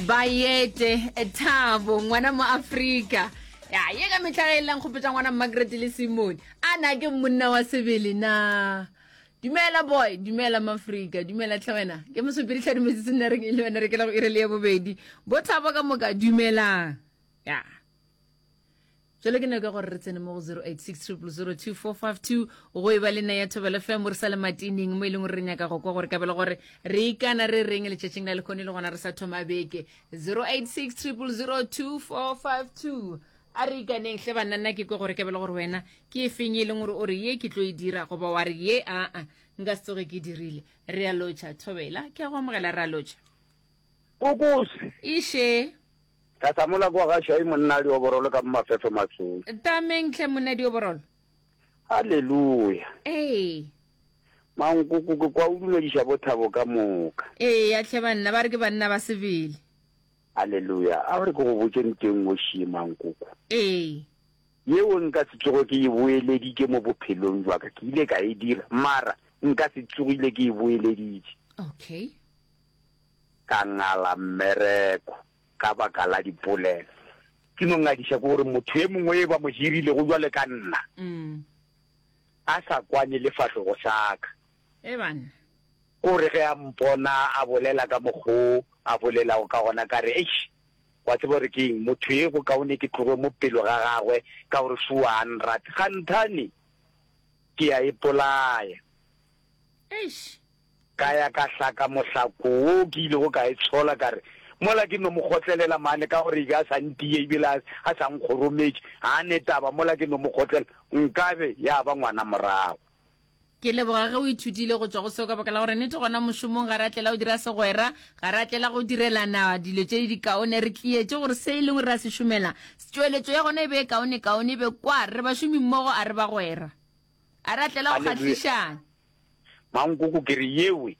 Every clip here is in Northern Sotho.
bayete thabo ngwana mo afrika ya ye ka metlha ge e leng kgopetsa ngwana margaret le simone a na ke monna wa sebele na dumela boy dumela maafrika dumela tlhe wena ke mosopedi tlha dumetse se nna re le wena re kela go irele ya bobedi bo thabo ka moka dumelang ya yeah. Jale ke nako ya gore re tsene mo go 0860002452 go e ba le nna ya Thobela FM re sa le matineng mo e leng gore re nyaka go kwa gore kabelo gore re ikana re reng letšatšing la lekgone le gona re sa thoma beke 0860002452 a re ikaneng hle banna nna ke kwe gore ke bele gore wena ke e feng e leng gore o re ye ke tlo e dira goba wa re ye aa nka se tsoge ke e dirile re a lotšha thobela ke a go amogela re a lotšha kokose ishe Ka hlamula kwa ga Shai monna a dioborolo ka mo mafefo masong. Tameng tlhe monna dioborolo. Haleluya! Ee. Mankoko ke kwa o dumediša bothabo ka moka. Eya tlhe banna, ba re ke banna ba sebele. Haleluya! A o re ke go botše nteng o šie Mankoko. Ee. Yeo nka se tsoge ke e boeleditše mo bophelong bja ka, ke ile ka e dira, mara nka se tsogile ke e boeleditše. Okay. ka ngala mmereko ka baka la dipolelo. Ke no ngadiša ke gore motho ye mongwe yo ba mo hirilego jwale ka nna a sa kwane le fahlogo sa ka. E banna. Ko re ge a mpona a bolela ka mokgo a bolelago ka gona ka re, Eish, wa tseba gore ke eng, motho ye go kaone ke tloge mo pelo ga gagwe ka gore sure a nrate. Kganthane ke a ipolaya. Eish, Ka ya ka hlaka mohlako wo ke ilego ka e tshola, ka re, Mola ke no mo kgotlelela mane, ka gore e be a sa ntiye e bile a, a sa nkgorometše. Ga a ne taba, mola ke no mo kgotlela, nkabe ya ba ngwana morago. Ke leboga ge o ithutile go tšwa go seo, ka baka la gore nnete gona mošomong ga re a tlela go dira segwera, ga re a tlela go direlana dilo tše dikaone. Re tlietše gore se e lego re a se šomela, tšweletšo ya gona e be e kaonekaone, e be kwa re bašomimmogo, a re bagwera. A re a tlela go kgahlišang. Mankoko ke re yewe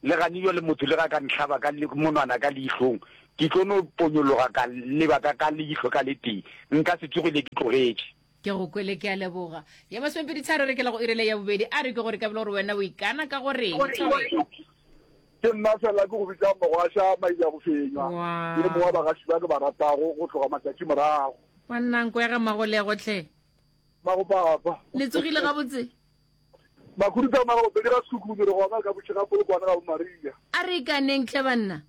le gane jwa le motho le ga ka nhlaba ka monwana ka leihlong ke tlo no ponyologa ka leba ka ka leihlo ka le tee nka se tsoge le ke tlogetše. Ke go kwele ke a leboga. Ya masomepedi tharo re kela go irele ya bobedi a re ke gore ka bile gore wena o ikana ka gore eng Thobela. Ke nna fela ke go bitsa mogwasha maija go fenywa ke le mongwe wa bagaši ba ke ba ratago go tloga matšatši morago. Wa nnanko ya ga Magolego tlhe. Ba go papa. Le tsogile ga botse. Ba go ruta mara go pele ra suku re go ba ka botse ga polo kwana ga bo Maria. A re ka neng tle banna.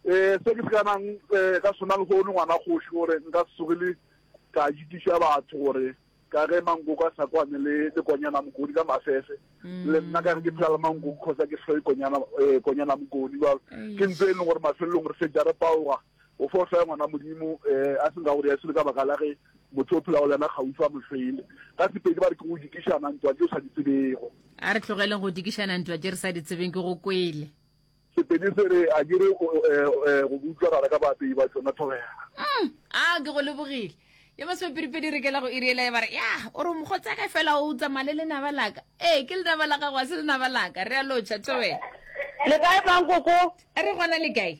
Eh se ke se kana eh ka sona le go no ngwana go shi gore nka sugile ka jitisha batho gore ka ge mango ka sa kwane le le konyana mokodi ka mafefe mm. le nna ka re ke phela le mango khosa ke hloe konyana eh konyana mokodi ba ke ntse e le gore mafelong re se jare paoga O fo fe ngwana Modimo eh, a seng ka gore ya sele ka baka la ge motho o phelago le yena kgaufa mohlwele. Ka Sepedi ba re ke go dikišana ntwa tse o sa di tsebego. A re tlogeleng go dikišana ntwa tše re sa di tsebeng, ke go kwele. Sepedi se re a ke re o, eh, eh, go butlwa gare ga baapei ba tšona thobela. Mm, a ke go lebogile. Yo ba sepedipedi re kela go iri ela ya ba re, ya, o re mokgotsaka fela o tsamaya le lenaba laka. Ee, ke lenaba la gago, a se lenaba laka. Re a lotšha, thobela. Le kae mang koko? A re gona le kae?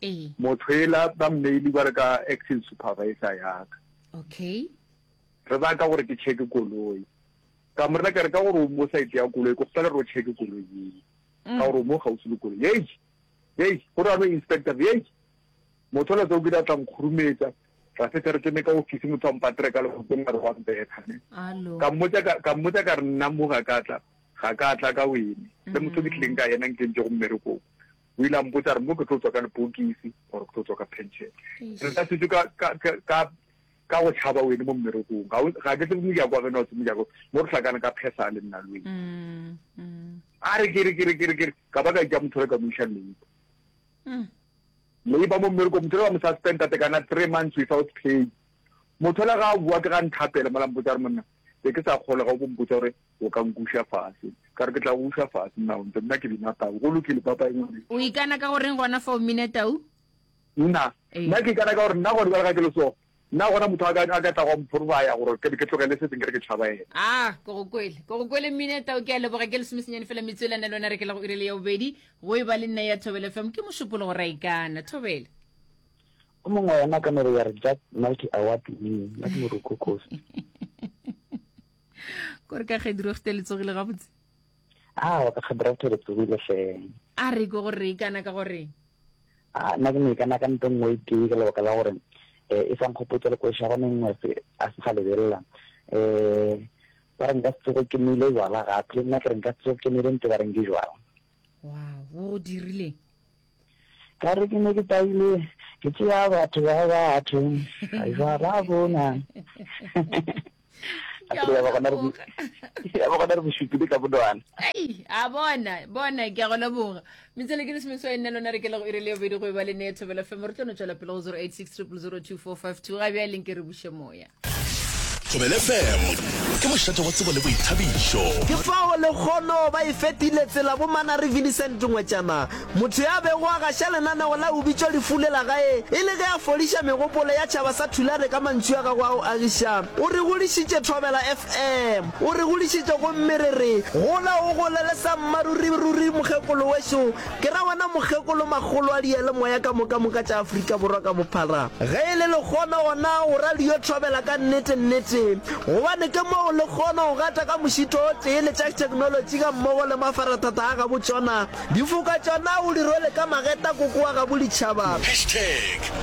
Ee. Motho ela ba mmeile kware ka acting supervisor yaka. Okay. Re ba ka gore ke check koloi. Ka mo rela ka re ka gore o mo side ya koloi go fela ro check koloi ye. Mm. Ka gore mo gausi le koloi. Hey. Hey, go ra no inspector. Hey. Motho la tseo ke tla tlang khurumetsa. Ra se tere tsene ka office motho a mpatre ka le go tsena re wa mbetha ne. Alo. Ka mmotsa ka ka mmotsa ka re nna mo ga ka tla ga ka tla ka wene. Le motho ke tleng ka yena nke ntse go mmereko. o ile a mpotsa re mo ke tlo tswa ka lepokisi gore ke tlo tswa ka pension re ka setse ka go tšhaba wene mo mmerekong ga ke tsebe mojako wa gena o tse mojako mo re hlakane ka phesa le nna lwe mm, mm. a re kere kere kere kere ka ba ka ja motho re ka moisa leipa mm. leipa mo mmereko motho le ba mo suspend tate kana three months without pay motho le ga a bua ke ga nthapele mola mpotsa re monna be ke sa kgole ga o bo mpotsa gore o ka nkuša fase ka re ke tla go uša fase nna onte nna ke bina tau go lokile papa engwane o ikana ka goreng gona fa o mine tau nna ee. nna ke ikana ka gore nna gone jale ga ke le so nna gona motho a ka tla go mphorbaya gore ke ke tlogele se seng ke re ke tšhaba ene a ah, ko go kwele ko go kwele mmine tao ke a leboga ke lesomesenyane fela metswelane le one re ke la go irele ya bobedi go e ba le nna ya thobele fam ke mošupolo go ra ikana thobele o mongwe yona ka mere ya re jack multi award winning ya ke moroko kosi kore ka kgediregte le tsogile gabotse a ka kgediregte le tsogile feng a re ke gore e kana ka gore a nna ke ne kana ka nto nngwe e tee ka lebaka la gore eh, e fang kgopotsa le kwesa gone nngwe a se ga lebelela um ba re nka se tsogo ke nile jwala gape le nna ke re nka se tsogo ke nile nte ba re nke jwala wow o dirileng ka re ke ne ke taile ke tsea batho ba batho aiwa ba bona ba gona re bosupile ka bonwana a bona bona ke a go leboga metsele ke lesome swa e nne lona re ke lego e re le yobedi go e ba le ne thobela femo re tlo no tswela pele go 086 002 452 ga bja e leng ke re buše moya Thobele FM ke mošate wa tsebo le boithabišo. Ke fao lekgono ba e fetile tsela bo Manary Vinicent Ngwetšana, motho ya bego a gaša lenaneo la O Bitšwa Lefu le la gae e le ge a fodiša megopolo ya tšhaba sa Thulare ka mantšu a gagwe a go agiša. O re godišitše Thobela FM, o re godišitše gomme re re, Gola o gole le sa mmaruri ruri mokgekolo wešo Ke ra wena mokgekolo makgolo a diyalemoya ka moka moka tša Afrika Borwa ka bophara. Ge e le lekgono gona o ra le yo thobela ka nnete nnete gobane ke moo le kgono go gata ka mošito o tee le tša theknolotši ga mmogo le mafarathata a gabo tšona. Difoka tšona o di rwele ka mageta koko wa gabo ditšhaba. Hashtag